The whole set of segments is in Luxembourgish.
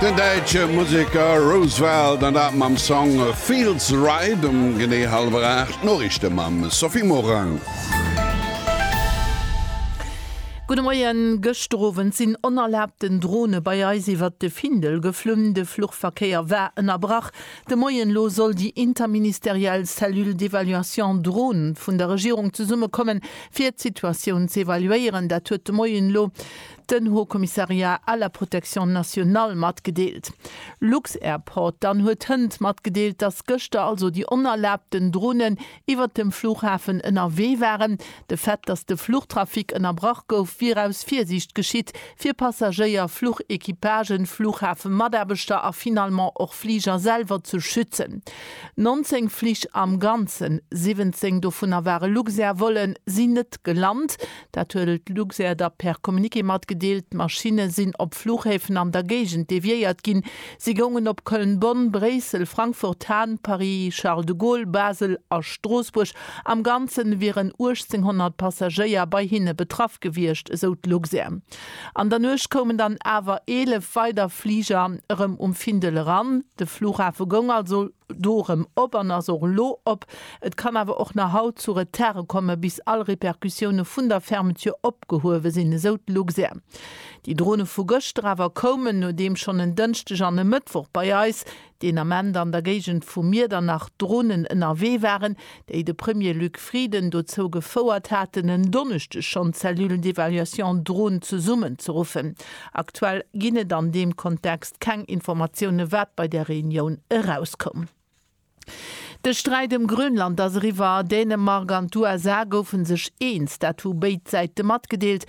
Den däitsche Museker Roosevelt an dat mam Song Feels Right um genee hallwer 8. D'Noriichte mam Sophie Morang. Gudde Moien, Gëschter Owend sinn onerlaabten Drone bei eis iwwert de Findel geflunn. De Fluchverkéier war ënnerbrach. De Moien elo soll déi interministeriell Cellule d'évaluation Drone vun der Regierung zesummekommen, fir d'Situatioun z'evaluéieren. Dat huet de Moien elo den Haut Commissariat à la Protection Nationale matgedeelt. Lux-Airport dann huet hënt matgedeelt, dass gëschter also déi onerlaabten Dronen iwwert dem Flughafen ënnerwee waren. De Fait, dass de Fluchtrafic ënnerbrach gouf, wier aus Virsiicht geschitt, fir Passagéier, Fluchequipagen, Flughafemataarbechter a finalement och Fliger selwer ze schützen. 19 Flich am Ganzen, 17 dovunner ware Luxair-Vollen, sinn net gelant. Dat huet d'Luxair da per Communiqué matgedeelt. D'Maschinne sinn op Fluchhäfen an der Géigend deviéiert ginn. Si goungen op Köln-Bonn, Bréissel, Frankfurt, Hahn, Paris, Charles de Gaulle, Basel a Stroossbuerg. Am Ganze wieren 1.800 Passagéier bei hinne betraff gewiescht, esou d'Luxair. An der Nuecht koumen dann awer 11 weider Fliger erëm um Findel eran. De Flughafe goung also do erëm op an ass och elo op. Et kann awer och nach haut zu Retarde kommen, bis all Repercussioune vun der Fermeture opgehuewe sinn, esou d'Luxair. Déi Drone vu gëschter awer koumen, nodeem schonn en Dënschdeg an e Mëttwoch bei eis, deen Ament an der Géigend vu Miedernach, Dronen ënnerwee waren, déi de Premier Luc Frieden dozou gefouert haten, en Donneschdeg schonn d'Cellule d'évaluation Drone zesummenzeruffen. Aktuell ginn et an deem Kontext keng Informatiounen, wat bei där Reunioun erauskoum. De Sträit ëm Grönland ass eriwwer. Dänemark an d'USA goufe sech eens, dat hu béid Säite matgedeelt.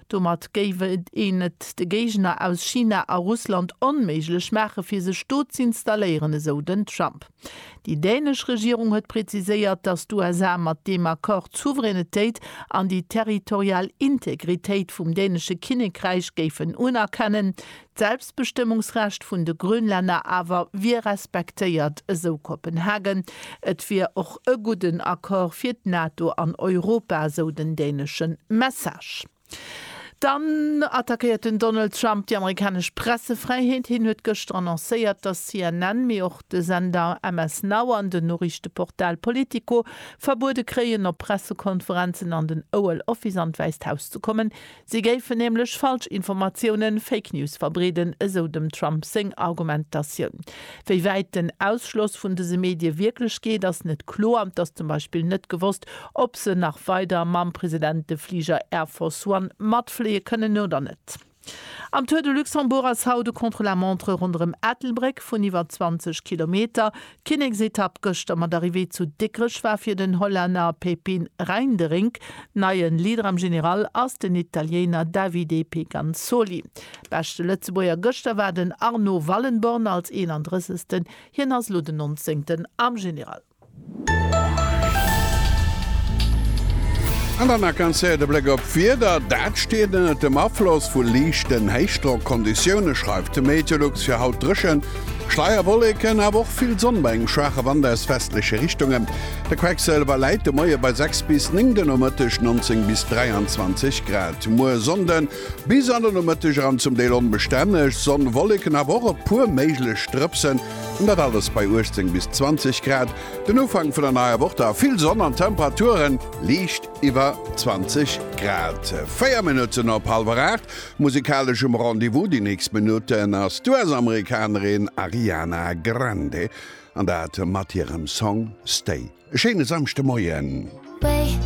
Domat géif een et de Géigner aus China a Russland onméiglech maachen, fir sech do z'installéieren, esou den Trump. Déi dänesch Regierung huet präziséiert, datt d'USA mat deem Accord d'Souveränetéit an déi territorial Integritéit vum dänesche Kinnekräich géifen unerkennen. D'Selbstbestëmmungsrecht vun de Grönlänner awer wier respektéiert, esou Kopenhagen. Et wier och e gudden Accord fir d'NATO an Europa, esou den dänesche Message. Dann attackéiert den Donald Trump déi amerikanesch Pressefräiheet. Hien huet gëschter annoncéiert, datt CNN, mee och de Sender MS Now an den Noriichteportal Politico verbuede kréien, op Pressekonferenzen an den Oval Office an d'Wäisst Haus ze kommen. Si géifen nämlech Falschinformatiounen, Fake News, verbreeden, esou dem Trump seng Argumentatioun. Wéi wäit den Ausschloss vun dëse Medie wierklech geet, ass net kloer. Et ass zum Beispill net gewosst, ob se nach weider mam President de Fliger Air Force One matfléie kënnen oder net. Am Tour de Luxembourg ass haut e Contre-la-montre ronderëm Ettelbréck vun iwwer 20 Kilometer D'Kinneksetapp gëschter mat Arrivée zu Dikrech war fir den Hollänner Pepijn Reinderink. Neien Leader am General ass den Italiener Davide Pegansoli. Beschte Lëtzebuerger gëschter war den Arno Wallenborn als 31. Hien ass elo den 19. am General. An dann nach ganz séier de Bléck op d'Wieder. Dat steet ënnert dem Afloss vu liichten Héichdrockconditioune, schreift de Meteolux. Fir haut dréchen. Schleierwolleken, awer och vill Sonn bei engem schwaache Wand aus westleche Richtunge. De Quecksëlwer läit de Moie bei 6 bis 9, de Nomëtteg 19 bis 23 Grad. Muer Sonnden, bis an de Nomëtteg eran zum Deel onbestänneg Sonn, Wolleken, awer och e puer méiglech Drëpsen, an dat alles bei 18 bis 20 Grad. Den Ufank vun der neier Woch da vill Sonn an Temperature liicht iwwer 20 Grad. 4 Minutten op hallwer 8. Musikaleschem Rendez-vous déi nächst Minutten ass d'US-Amerikanerin Ariana Grande, an dat mat hirem Song Stay. E schéine Samschdemoien.